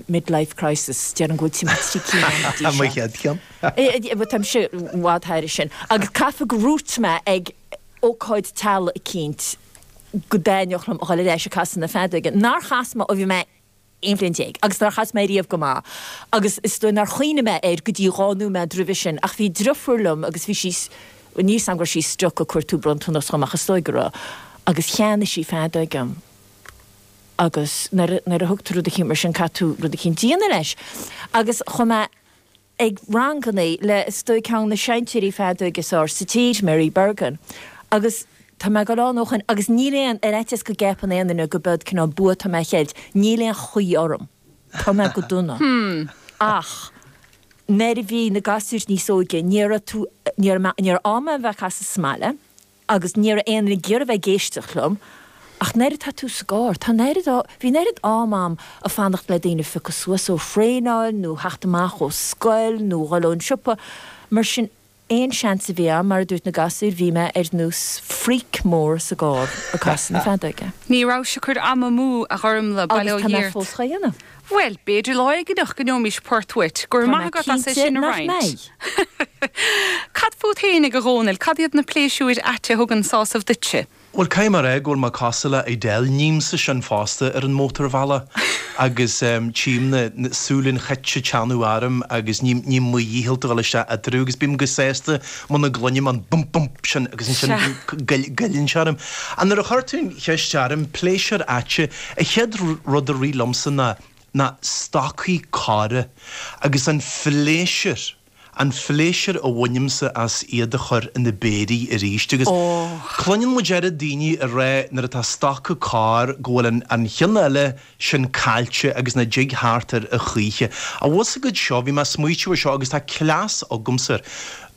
Mid-life crisis, déarfainn go bhfuil timpeall trí cinn ann go dtí seo. Mo chéad cheann. Táimse i bhfad thairis sin. Agus caithfidh gur dhúirt mé ag ócáid teaghlaigh eicínt go dtaitneodh liom a dhul ar ais ag casadh na feadóige. Nár chas mé ó bhí mé aon bhliain déag agus nár chas mé riamh go maith agus is dóigh nár chuimhnigh mé air go dtí dhá nóiméad roimhe sin. Ach bhí driofúr liom agus bhí sí, bhuel níl 's a'm go raibh sí stuck ag cuartú bronntanas dhom ach is dóigh go raibh. Agus cheannaigh sí feadóg dhom. Agus nuair a, nuair a thugtar rud eicínt mar sin, caithfidh tú rud eicínt a dhéanamh leis. Agus chuaigh mé ag rangannaí le, is dóigh, ceann de na seinnteoirí feadóige is fhearr sa tír, Mary Bergin. Agus tá mé ag dul ann ó shin agus níl aon, ar fhaitíos go gceapann aon duine gurb eod cineál bua atá mé a cheilt, níl aon chaoi orm. Tá mé go dona. Ach nuair a bhí na gasúir níos óige, níor fhéad tú, níor, níor fhéad mé bheith ag casadh sa mbaile. Agus ní raibh aon duine ag iarraidh bheith ag éisteacht liom. Ach an oiread, tá tú sa gcarr, tá an oiread, bhí an oiread am a'm ag fanacht le daoine phiocadh suas ó thraenáil nó theacht amach ó scoil nó dhul ón siopa. Mar sin, aon seans a bhí a'm, mar a dúirt na gasúir, bhí mé ar nós freak mór sa gcarr ag casadh na feadóige. Ní rabhais ag cur ama amú, a Ghormfhlaith, bail ó Dhia ort. Agus tá mé fós dhá dhéanamh. Bhuel, b'fhéidir lá éigineach go ngeobhaimís port uait. Go raibh maith agat as é sin a roinnt. Tá mé cinnte nach mbeidh. Cad fút féinig, a Dhónaill, cad iad na pléisiúir aite a thugann sásamh duitse? Bhuel, caithfidh mé a rá go bhfuil mé cosúil le Edel, nímsa sin fosta ar an mótarbhealach agus tchím na súile an chait ag teannadh orm agus ním ním mo dhícheall dul isteach eatarthu agus bím go sásta muna gcluinim an bump bump sin agus ansin Sea. goileann sé orm. Ach nuair a chuir tú an cheist orm, pléisiúir aite, An chéad rud a rith liomsa ná ná stocaí corra agus an phléisiúr, an phléisiúr a bhainimse as iad a chur ina bpéirí arís. Agus cluineann muid oiread daoine ag rá nuair atá stoca corr go bhfuil an an ceann eile sin caillte agus nach dtigtear air a choíche. An bhfuil a fhios agat seo, bhí mé ag smaoitiú ar seo agus tá cleas agamsa.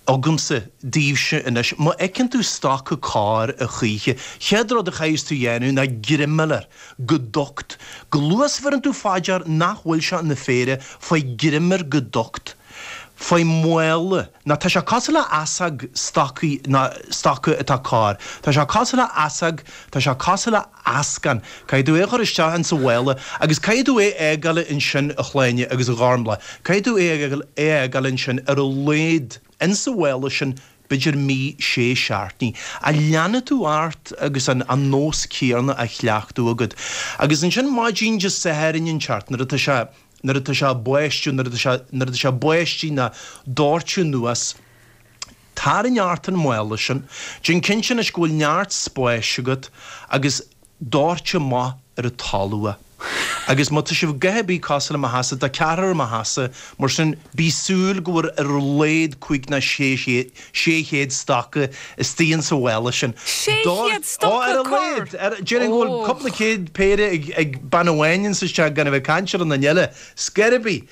agamsa daoibhse anois. Má fheiceann tú stoca corr a choíche, chéad rud a chaithfeas tú dhéanamh ná greim a fháil air go docht. Chomh luath is a bheireann tú fá dear nach bhfuil sé ina phéire, faigh greim air go docht. Faigh mála. Nó tá sé cosúil le heasóg, stocaí, nó stoca atá corr. Tá sé cosúil le heasóg, tá sé cosúil le. eascann. Caithfidh tú é a chur isteach ins an mhála agus caithfidh tú é a fhágáil ansin, a Shláine, agus a Ghormfhlaith, caithfidh tú é a fhágáil ansin ar a laghad ins an mhála sin b'fhéidir mí, sé seachtainí. Ach leanfaidh tú ort agus an nós céanna á chleachtadh agat. Agus ansin maidin Dé Sathairn inteacht, nuair atá sé, nuair atá sé ag báistigh, nuair atá sé, nuair atá sé ag báistigh nó ag doirteadh anuas, Tarraing ort an mála sin déan cinnte anois go bhfuil neart spáis agat agus doirt amach ar an talamh. Agus má tá sibh gath ar bith cosúil le mo theachsa, tá ceathrar i mo theachsa mar sin bí ag súil go bhfuil ar a laghad cúig ná sé chéad stoca istoigh insa mhála sin. Sé chéad stoca? Ar a laghad. Déarfainn go bhfuil cupla céad péire ag bean amháin insa teach gan a bheith ag caint ar aon nduine eile. Scor ar bith.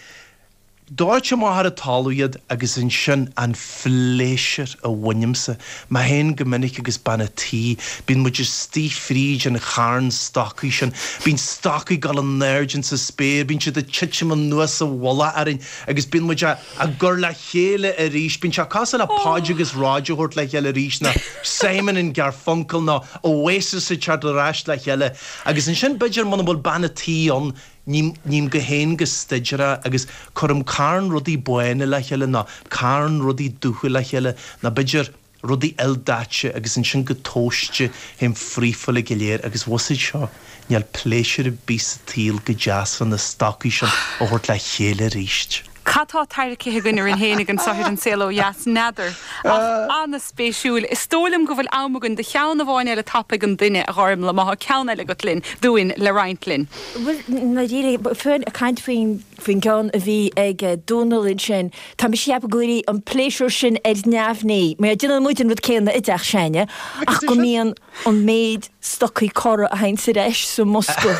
Doirt amach ar an talamh iad agus ansin an pléisiúr a bhainimse. Mé héin go minic agus bean a' tí, bíonn muid istigh fríd an charn stocaí sin. Bíonn stocaí ag gabháil in airde insa spéir, bíonn siad ag titim anuas sa mhullach orainn agus bíonn muid á á gcur le chéile arís. Bíonn sé cosúil le Podge agus Rodge a thabhairt le chéile arís nó Simon and Garfunkel nó Oasis ag teacht ar ais le chéile. Agus ansin b'fhéidir muna bhfuil bean a' tí ann, Ním, ním go héin go staidéartha agus cuirim carn rudaí bána le chéile ná carn rudaí dubha le chéile ná b'fhéidir rudaí ildaite agus ansin go tomhaiste théim fríofa uilig go léir agus bhfuil a fhios agat seo, níl pléisiúr ar bith sa tsaol chomh deas leis na stocaí sin a thabhairt le chéile aríst. Cad tá tarraingthe againn orainn féinig anso ar An Saol Ó Dheas? N'fheadar. Ach an-spéisiúil. Is dóigh liom go bhfuil am againn do cheann amháin eile tapaidh an duine, a Ghormlaith, má tá ceann eile agat linn, dúinn, le roinnt linn. Bhuel, ná déan é. Caint faoin gceann a bhí ag Dónall ansin, tá mise ag ceapadh go bhfuil an pléisiúr sin ar neamhní, mar déanann muid an rud céanna i dteach s'againne, ach go mbíonn. an méid stocaí corra a théanns ar ais sa mbosca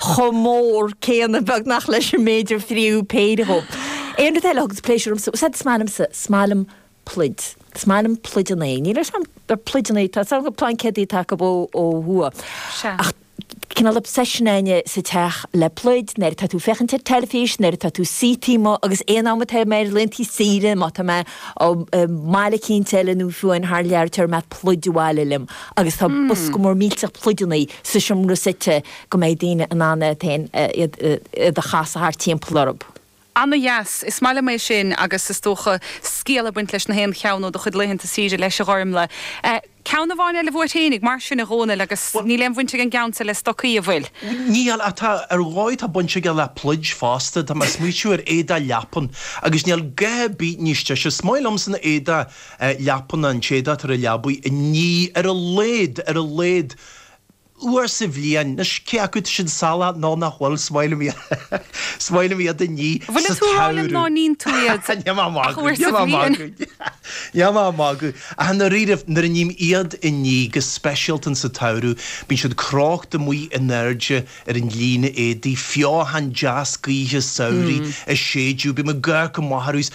chomh mór céanna beagnach leis an méid ar fríothadh péire dhóibh. Aon rud eile a thuganns pléisiúr domsa, bhfuil a fhios agat, is maith liomsa, is maith liom pluid, is maith liom pluid an é, níl a fhios agam, pluid an é, tá a fhios agam go bhfuil plaincéad atá acu ó thuaidh ach. cineál obsession a'inne sa teach le pluid, nuair atá tú ag féachaint ar teilifís, nuair atá tú suite amuigh agus aon am atá mé ar laethantaí saoire, má tá mé i mbaile eicínt eile nó fiú amháin thar lear, tabharfaidh mé pluid abhaile liom agus tá bosca mór millteach pluideanna sa seomra suite go mbeidh daoine in ann iad féin, iad a chasadh thart timpeall orthub. Ana dheas. Is maith liom é sin agus is dócha scéal ag baint leis na haon cheann ó do chuid laethanta saoire leis a Ghormlaith. Eh ceann amháin eile uait fhéinig, mar sin, a Dhomhnaill agus Bhuel, níl aon bhaint ag an gceann seo le stocaí, an bhfuil? níl ach tá, ar dhóigh tá baint aige le pluid fosta, tá mé ag smaoitiú ar éadaí leapan agus níl gath ar bith níos deise, is maith liomsa na héadaí eh leapan ná an t-éadach atá ar a leabaidh a ní ar a laghad, ar a laghad. uair sa bhliain. Anois, cé acu tá siad salach nó nach bhfuil, is maith liom iad, is maith liom iad a ní sa samhradh. Bhfuil tú ag rá liom ná níonn tú iad ach uair sa bhliain? Níl mé ach ag magadh, níl mé ach ag magadh, níl mé ach ag magadh. Ach i ndáiríribh, nuair a ním iad a ní, go speisialta sa tsamhradh, bíonn siad crochta amuigh in airde ar an líne éadaigh, feothan deas gaoithe samhraidh ag séideadh, bíonn an gaoth go maith ar fheabhas.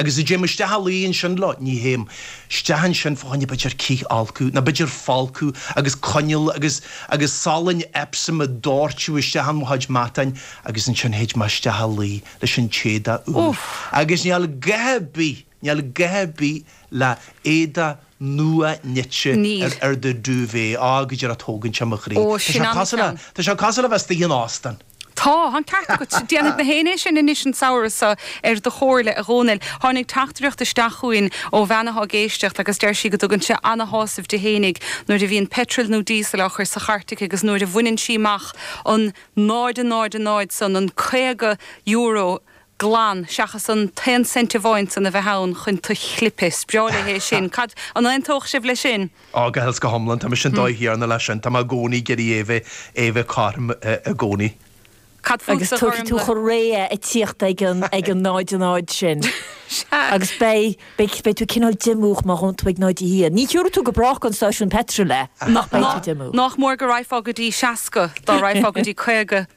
Agus a dtéim isteach a luí ansin leo, ní théim isteach ansin fá choinne b'fhéidir cithfholcadh, nó b'fhéidir folcadh agus coinneal agus agus salainn Epsom a dhoirteadh isteach in mo chuid matáin agus ansin théid mé isteach a luí leis an t-éadach úr. Agus níl a dhath ar bith, níl a dhath ar bith le éadach nua nite Níl. ar do duvet. Á, go díreach, tógann seo mo chroí. Ó, Tá sin sé an cosúil le, ceann. tá sé cosúil le bheith istigh in óstán. Tá, tá an ceart agat. Déanfaidh mé féin é sin anois an samhradh seo, ar do chomhairle, a Dhomhnaill. Tháinig teachtaireacht isteach chugainn ó bhean atá ag éisteacht agus deir sí go dtugann sé ana-shásamh di fhéinig nuair a bhíonn petrol nó diesel á chur sa chairt aici agus nuair a bhaineann sí amach an 0.00 san, an €50 glan, seachas an t-aon cent amháin san a bheith ann chun tú a chlipeadh. Is breá léi é sin. Cad, an aontódh sibh leis sin? Á, go huile is go hiomlán. Tá mise an dóigh chéanna leis sin. Tá mé i gcónaí ag iarraidh é bheith, é bheith cothrom i gcónaí. Cad fútsa a Ghormfhlaith? Agus tabharfaidh tú réidh ag tíocht ag an, ag an 0 a 0 sin. Sea. Agus beidh, beidh, beidh tú cineál díomách má ghabhann tú ag 0 a 1. Ní thiúrfaidh tú go brách go an stáisiún peitril é, ach beidh Ná, tú díomách. nách mór go raghfá go dtí 60, dá raghfá go dtí 50.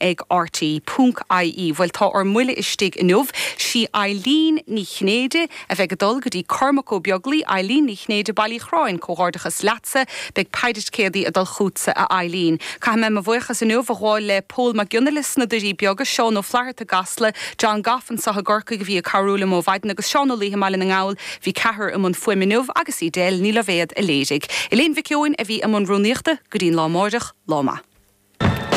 ag rte.ie Bhuel tá ár mbuille istigh inniu. Sí Eileen Ní Chinnéide a bheidh ag dul go dtí Cormac Ó Beaglaoi, Eileen Ní Chinnéide, Baile Uí Chorráin, comhghairdeachas leatsa. Beidh péire ticéadaí ag dul chutsa a Eileen. Caithfidh mé mo bhuíochas inniu a ghabháil le Pól Mac Fhionnaile sna Doirí Beaga, Seán Ó Flatharta i gCasla, John Gough anseo i gCorcaigh a bhí ag cabhrú liom ó mhaidin agus Seán Ó Laoithe i mBaile na nGall. Bhí ceathrar i mbun fuaime inniu agus Edel Ní Loibhéad a léirigh. Elaine Mhic Eoin a bhí i mbun rúnaíochta. Go dtí an lá amáireach, lá maith.